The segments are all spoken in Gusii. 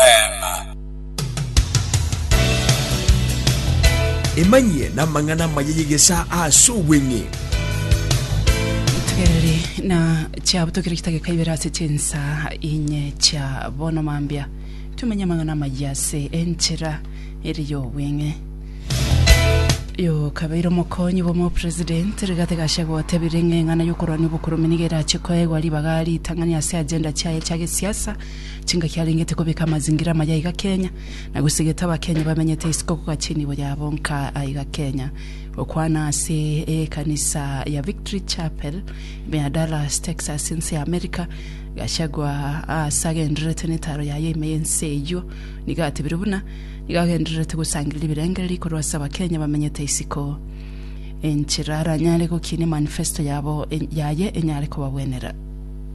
Eema. Emanyie namang'ana amaya y'egesaa ase obweng'e. Togereri na chiabo tokire chidakika ibere ase chinsaa inye chia bono mambia tumenye amang'ana amaya ase enchera ere y'obweng'e. Yokabeire omokonyi bw'omopresident Rigathi Gachagua otebire ng'a eng'ana y'okorwania obokurume nigo erache koegwa ribaga ritang'ani ase agenda chiaye chia gesiasa Chingaki arengete kobeka amazingira amaya aiga Kenya, na gosegete Abakenya bamenyete isiko kogacha enibo yabo nka aiga Kenya. Gokwana ase ekanisa ya Victory Chapel ime ya Dallas, Texas, ense ya America, Gachagua ase agendererete netaro yaye ime y'ense eyio nigo atebirie buna nigo agendererete gosangereria ebirengererio ikorwa ase Abakenya bamenyete isiko enchera aranyare gokinia manifesto yabo yaye enyare kobagwenera.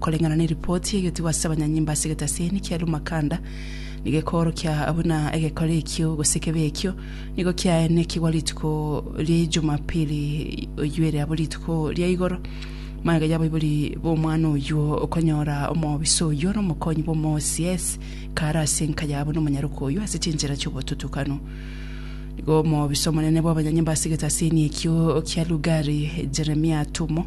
Koreng'ana neripoti egetigwa ase abanyanyimba ase egetaseni kia Lumakanda, nigo ekoorokia buna egekore ekio gose ekebe ekio nigo kiaene kigwa rituko ria Ijumapili oyio ere abo rituko ria igoro. Magega y'abaibori b'omwana oyio okonyora omobisa oyio n'omokonyi bw'omoCS kaare ase enka yabo n'omonyaroka oyio ase chinchera chi'obotutukanu. Nigo omobisa omonene bw'abanyanyimba ase egetaseni ekio kia Lugari, Jeremia Atumo,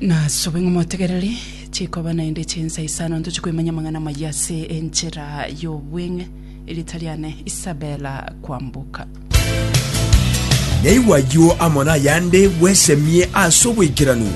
Nasobe ng'a motegereri chikoba naende chinsa isano ntoche koimanya amang'ana amayia ase enchera y'obweng'e. Erita riane Isabella Kwamboka. Naigwa ayio amo nayande bwesemie ase obwaikeranu.